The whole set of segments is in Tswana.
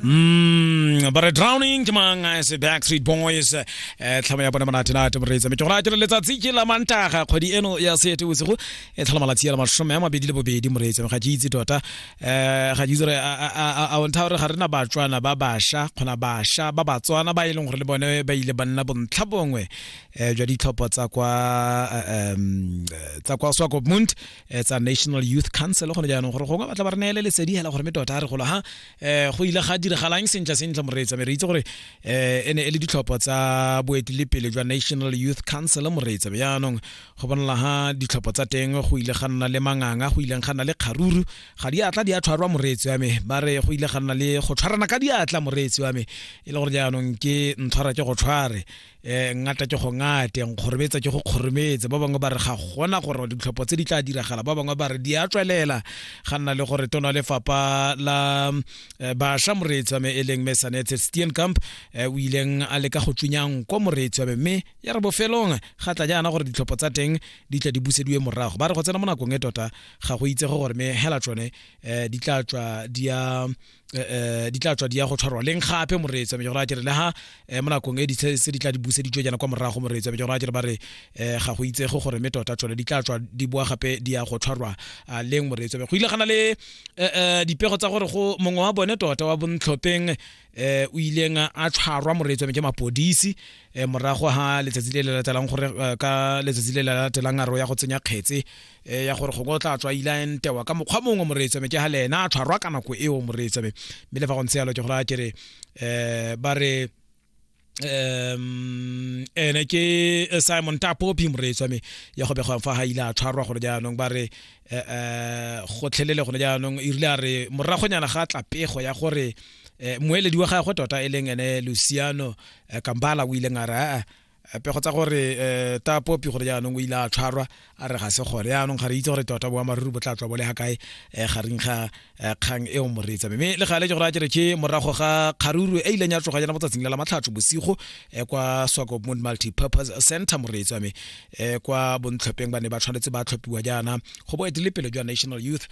Mm, but a drowning ke mang a se backstreet boys eh tlhamo ya bona monate nate moreetsa me ke gore a dire letsatsi ke la mantaga kgwedi eno ya sete bosigo e tlhola malatsi ya mashome a mabedi le bobedi moreetsa ga ke itse tota eh ga ke itse gore a- a- a a- a o ntha gore ga rena batswana ba basha kgona basha ba batswana ba e leng gore le bone ba ile ba nna bontlha bongwe eh jwa ditlhopho tsa kwa eh, em, eh, tsa kwa swakopmund eh, tsa national youth council gone jaanong gore gongwe batla ba re neele lesedi hela gore mme tota a re golo ha um go ile ga diragalang sentle sentle moreetsa me re itse gore um e ne e le ditlhopho tsa boetelepele jwa national youth council moreetsa be jaanong go bonala ha ditlhopho tsa teng go ile ga nna le manganga go ileng ga nna le kgaruru ga di atla di a tshwarwa moreetsi wa me ba re go ile ga nna le go tshwarana ka diatla moreetsi wa me e le gore jaanong ke ntshwara ke go tshware um ngata ke go ngate nkgorobetsa ke go kgorometse ba bangwe ba re ga gona gore ditlhopho tse di tla diragala ba bangwe ba re di a tswelela ga nna le gore tona lefapha la eh, bašwa moreetsi wa me e leng me sanetse stien camp eh, o ileng a leka go tsunyang ko moreetsi wa me mme ya re bofelong ga tla jaana gore ditlhopho tsa teng di tla di busediwe morago ba re go tsena mo nakong e tota ga go itsege gore me hela tsone um di tla tswa di a Eh, eh, di tla tswa di ya go tshwarwa leng gape moreetsa me jora kere le ha eh, mo nakong e di tse di tla di buse di jana kwa morago moreetsa me jora kere ba re ga go itse go gore me tota tsone di tla tswa di boa gape di ya go tshwarwa ah, leng moreetsa me go ile gana le dipego tsa gore go mongwe wa bone tota wa bontlhopheng eh o ileng a tshwarwa moreetso me ke mapodisi eh morago ha letsatsi le le latelang gore eh, ka letsatsi le le latelang a ro ya go tsenya kgetse e ya gore gongwe o tla tswa ile a entewa ka mokgwa mongwe moreetsame ke ga le ena a tshwarwa ka nako eo moreetsame mme le fa go ntse yalo ke gore a ke re um ba re um ene ke eh, simon tapopi moreetsi wa me ya go begwang fa ga ile a tshwarwa gone jaanong ba re um gotlhelele gone jaanong e rile a re moragonyana ga tla pego ya gore um moeledi wa gagwe tota e leng ene luciano kambala o ileng a re aa Eh, pego tsa gore um eh, ta popi gore jaanong o ile a tshwarwa a re ga se gore jaanong ga re itse gore tota boamaruri bo tla tswa bo le ga kae um gareng ga kgang eo moreetsa mme le gale ke gore a kere ke morago ga kgaruru e ileng ya tsoga jana botsatsing la la matlhatso bosigo um kwa swakopmont multipurpose center moreetsa me um kwa bontlhopheng ba ne ba tshwanetse ba tlhophiwa jaana go bo etile pele jwa national youth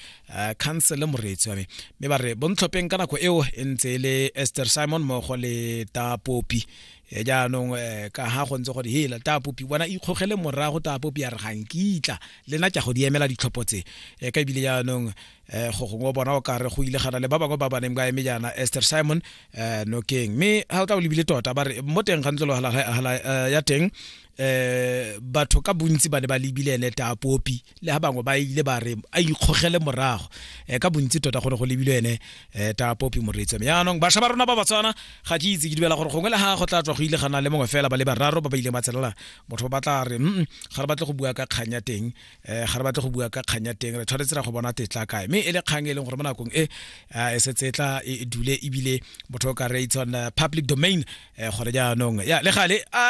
council moreetsa me mme ba re bontlhopheng ka nako eo e ntse e le esther simon mmogo le ta popi e jaanong um ka ga go ntse gore hela taapopi bona ikgogele morago taapopi ya re ga nkitla le na tša go di emela ditlhopho tse um ka ebile jaanong um go gongwe bona o kare go ile gana le ba bangwe ba baneng ba eme jaana ester simon um nokeng mme ga o tla o lebile tota ba re mo teng ga ntlo ya teng eh batho ka bontsi ba ne ba lebile ene ta popi le ha bangwe ba ile ba re a ikgogele morago eh ka bontsi tota go ne go lebile ene eh ta popi moreetse me yanong basha ba rona ba batswana ga ke itse ke dibela gore gongwe le ha go tla tswa go ile gana le mongwe fela ba le bararo ba ba ile matselela motho ba batla re mm ga re batle go bua ka kganya teng eh ga re batle go bua ka kganya teng re tshwanetse ra go bona tetla kae me e le kgang e leng gore mo nakong e eh, e se tsetla e e dule ebile motho o ka re it's on eh, public domain eh, gore jaanong ya le gale a re